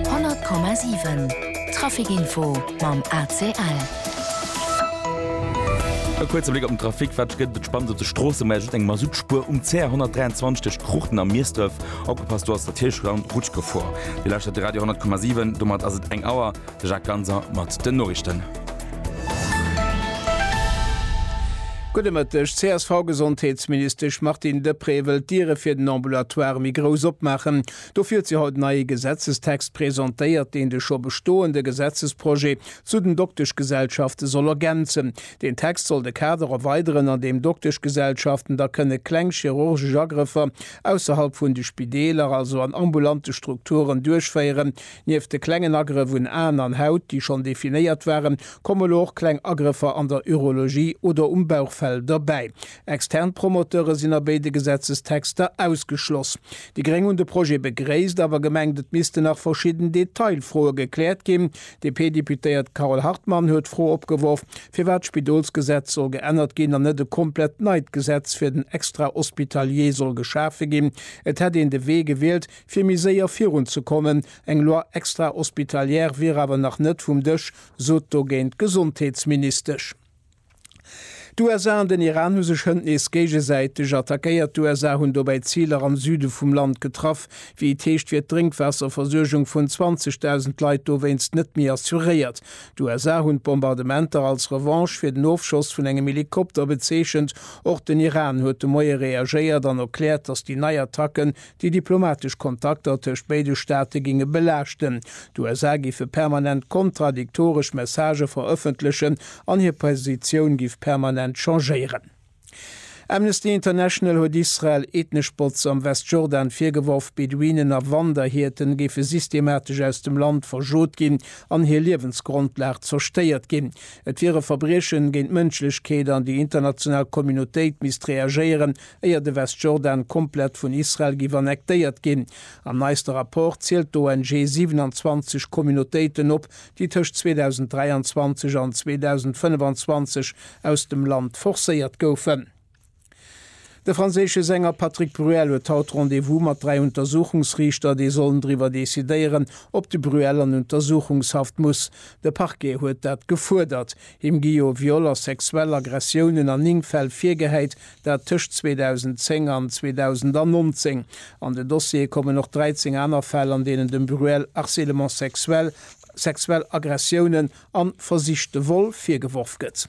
100,7 Trafic Info mam ACL. E kuerze Bléck op den Trafic, wat gëtt et spannend op de Stroossen? Mä just eng Masutspuer um CR 123 tëscht Cruchten a Miesdref. Opgepasst, do ass der Tiersch Round Rutschgefor. Dir lauschtert de Radio 10,7, domat ass et eng Auer. De Jacques Ganser mat den Noriichten. Gudde Mëtteg. D'CSV-Gesondheetsministesch Martine Deprez wëll d'Diere fir den Ambulatoire méi grouss opmaachen. Dofir huet si haut nei ee Gesetzestext presentéiert, deen de scho bestoende Gesetzesprojet zu den Dokteschgesellschafte soll ergänzen. Deen Text soll de Kader erweideren, an deem Dokteschgesellschaften da kënne kleng chirurgesch Agrëffer ausserhalb vun de Spideeler, also an ambulante Strukturen, duerchféieren, Nieft de klengen Agrëff un Aen an Haut, déi schonn definéiert waren, kommen elo och kleng Agrëffer an der Urologie oder um Bauchfell derbäi. Extern Promoteure sinn a béide Gesetzestexter ausgeschloss. Déi Gréng hunn de Projet begréisst, awer gemengt, et missten nach verschidden Detailfroe gekläert ginn. D'DP-Deputéiert Carole Hartmann huet d'Fro opgeworf, firwat d'Spidolsgesetz soll geännert ginn an net e komplett neit Gesetz fir den Extrahospitalier soll geschafe ginn. Et hätt een de Wee gewielt, Fir méi séier virun ze kommen. Eng Loi extra-hospitalière wier awer nach net vum Dësch, sot dogéint d'Gesondheetsministesch. D'USA an den Iran hu sech hënt nees géigesäiteg attackéiert. D'USA hunn dobäi Ziler am Süde vum Land getraff. Wéi et heescht, wier d'Drénkwaasserversuergung vun 20.000 Leit dowéinst net méi assuréiert. D'USA hunn d'Bombardementer als Revanche fir den Ofschoss vun engem Helikopter bezeechent. Och den Iran huet de Moie reagéiert an erkläert, datt déi nei Attacke Déi diplomatesch Kontakter tëscht béide Staate géinge belaaschten. D'USA géife permanent kontradiktoresch Messagë verëffentlechen an hir Positioun géif permanent changéieren. Amnesty International huet Israel ethnesch Botz am Westjordan virgeworf, Beduinen a Wanderhierten géife systematesch aus dem Land verschot ginn an hir Liewensgrondlag zerstéiert ginn. Et wier e Verbriechen géint d'Mënschlechkeet an déi international Communautéit misst reagéieren, éier de Westjordan komplett vun Israel giff annektéiert ginn. Am neiste Rapport zielt d'ONG 27 Communautéiten op, déi tëscht 2023 an 2025 aus dem Land forcéiert goufen. De franséische Sänger Patrick Bruel huet haut Rendez-vous mat dräi Untersuchungsriichter, déi sollen driwwer decidéieren, ob de Bruel an Untersuchungshaft muss. De Parquet huet dat gefuerdert. Him gi jo Viol a sexuell Aggressiounen an 9 Fäll virgehäit, Dat tëscht 2010 an 2019. An den Dossier kommen och 13 aner Fäll, an deenen dem Bruel harcèlement sexuel, sexuell Aggressiounen a versichte Vol virgeworf gëtt.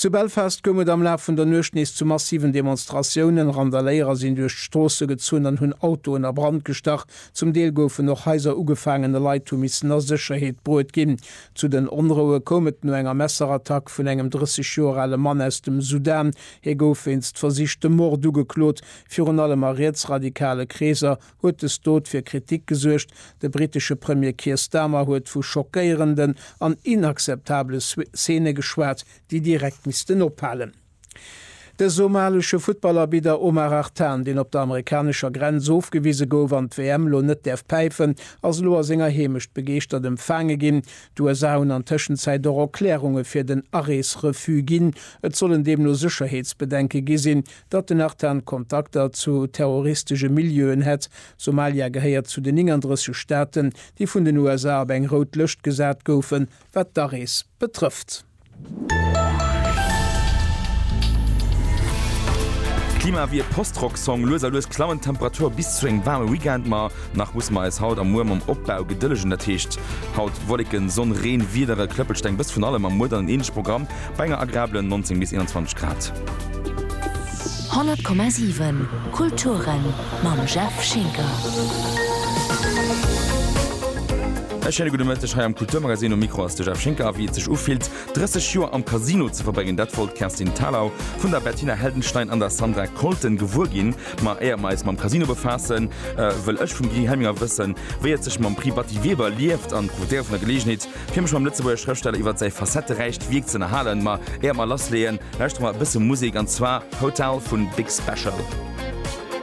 Zu Belfast koum et am Laf vun der Nuecht nees zu massiven Demonstratiounen. Randaléierer sinn duerch d'Stroosse gezunn an hunn Autoen a Brand gestach. Zum Deel goufen och Haiser ugefaangen a Leit hu missen a Sécherheet bruet ginn. Zu den Onroue koum et no enger Messerattack vun engem 30 Joer ale Mann aus dem Sudan. Hie gouf wéinst versichtem Mord ugeklot. Virun allem a rietsradikale Kreeser huet des Dot fir Kritik gesuergt. De brittesche Premier Keir Starmer huet vu schockéierenden an inakzeptable Szene geschwat, déi direkt missten ophalen. De somalesche Futtballarbidder Omar Artan, deen op der amerikanescher Grenz ofgewise gouf an d'WM elo net däerf päifen, ass elo a senger Heemecht begeeschtert empfaange ginn. D'USA hunn an Tëschenzäit och Erklärunge fir den Arees-Refus ginn. Et sollen deemno Sécherheetsbedenke gi sinn, datt den Artan Kontakter zu terroristesche Milieuen hätt. Somalia gehéiert zu den 39 Staaten, déi vun den USA op eng rout Lëscht gesat goufen, wat d'Arees betrëfft. Klima ewéi e Post-Rock-Song, lues a lues klammen d'Temperature bis zu engem waarme Weekend, ma nach musse mer eis haut a muer mam Opbau gedëllegen. Dat heescht haut Wolleken, Sonn, Reen, Wiedere, Klëppelsteng, e bësse vun allem a muer dann en änleche Programm bei enger agreabelen 19 bis 21 Grad. 100,7 Kulturen mam Jeff Schinker. E schéine gudde Mëtteg hei am Kulturmagazin. Um Mikro ass de Jeff Schinker. A wéi et sech ufillt, 30 Joer am Casino ze verbréngen, dat wollt d'Kerstin Thalau vun der Bettina Heldenstein an der Sandra Colton gewuer ginn. Ma éier mer eis mam Casino befaassen, wëll ech vum Guy Helminger wëssen, wéi et sech mam Prix Batty Weber lieft an profitéiere vun der Geleegenheet, fir mech mam Lëtzebuerger Schrëftsteller iwwer säi facetteräicht Wierk ze ënnerhalen. Ma éier mer lassleeën, lauschtere mer e bësse Musek, an zwar Hotel vun Big Special.